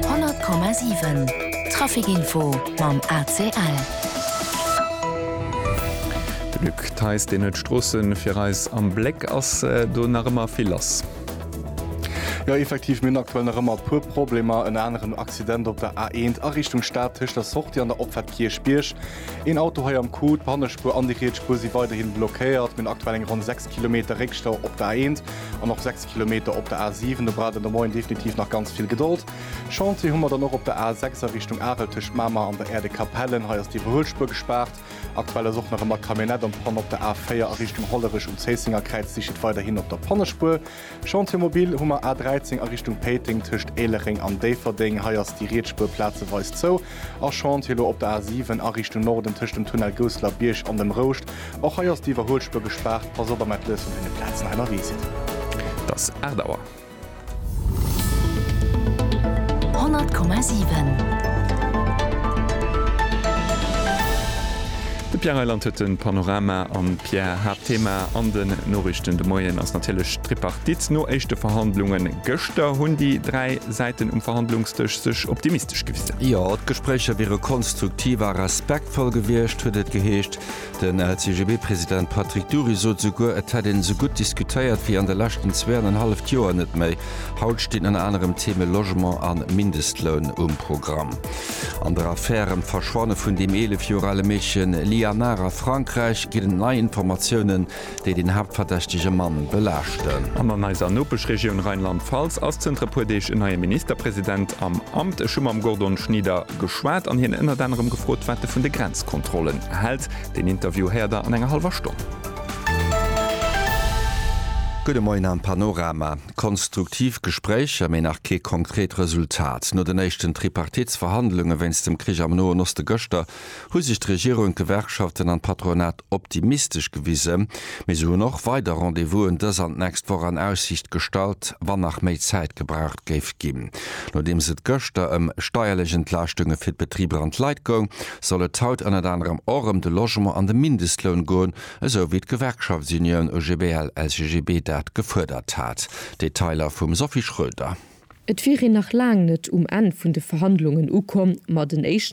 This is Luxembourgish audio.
100,7 Trafic-Info mam ACL. De Luc Theis, deen huet d'Stroosse fir eis am Bléck. Ass do nach ëmmer vill lass? Jo, effektiv, mir hunn aktuell nach ëmmer e puer Problemer. Ënner anerem en Accident op der A1 a Richtung Stad tëscht der Sortie an der Opfahrt Kierchbierg. Een Auto hei am Coup, d'Pannespuer an déi riets Spuer si weiderhi blockéiert. Mir hunn aktuell eng ronn 6 Kilometer Réckstau op der A1. An och 6 Kilometer op der A 7, do braucht een de Moien definitiv nach ganz vill Gedold. Chantier hu mer dann och op der A 6 a Richtung Arel tëscht Mamer an der Aire de Capellen. Hei ass d'Iwwerhuelspuer gespaart. Aktuell ass och nach ëmmer Camionette an Panne op der A 4 a Richtung Hollerech. Um Zéissenger Kräiz sicht et weiderhin op der Pannespuer. Chantier mobil hu mer A 13 a Richtung Péiteng tëscht Éilereng an Déifferdeng. Hei ass déi riets Spuer plazeweis zou. A Chantier elo op der A7 a Richtung Norden tëscht dem Tunnel Gousseler Bierg an dem Rouscht. Och hei ass déi Iwwerhuelspuer gespaart. Pass op am Atlëss vun deene Plazen hei ënnerwee sidd. Et ass 8 Auer. 100,7. De Pierre Reyland huet de Panorama an Pierre, Haaptthema an den Noriichten de Moien ass natierlech d'Tripartite. No éischte Verhandlunge gëschter hunn déi dräi Säiten um Verhandlungsdësch sech optimistesch gewisen. Jo, d'Gespréicher wiere konstruktiv a respektvoll gewiescht, huet et geheescht. Den LCGB-President Patrick Dury sot esouguer, et hätt een esou gutt diskutéiert wéi an de leschten zwee an en halleft Joer net méi. Haut stinn ënner anerem d'Theme Logement a Mindestloun um Programm. An der Affär ëm d'Verschwanne vun deem 11 Joer ale Meedchen Lianar a Frankräich ginn et nei Informatiounen. déi den haaptverdächtege Mann belaaschten. An an eiser Nopeschregioun Rheinland-Pfalz ass zënter e puer Deeg en neie Ministerpresident am Amt. Ech hu mam Gordon Schnieder geschwat an hien ënnert anerem gefrot, wat e vun de Grenzkontrollen hält. Deen Interview héiert der an enger hallwer Stonn. Gudde Moien am Panorama. Konstruktiv Gespréicher, mee nach kee konkret Resultat. No den éischten Tripartitsverhandlunge wéinst dem Krich am Noen Oste gëschter, hu sech d'Regierung, d'Gewerkschaften an d'Patronat optimistesch gewisen, mee se hunn och weider Rendez-vousen dës an d'nächst Woch an Aussiicht gestallt, wann nach méi Zäit gebraucht géif ginn. Nodeems et gëschter ëm steierlech Entlaaschtunge fir d'Betriber an d'Leit goung, soll et haut ënnert anerem och ëm de Logement an de Mindestloun goen, esou wéi d'Gewerkschaftsunioun OGBL-LCGB dat gefuerdert hat. Detailer vum Sophie Schröder. Et wier een nach laang net um Enn vun de Verhandlungen ukomm, ma den éischten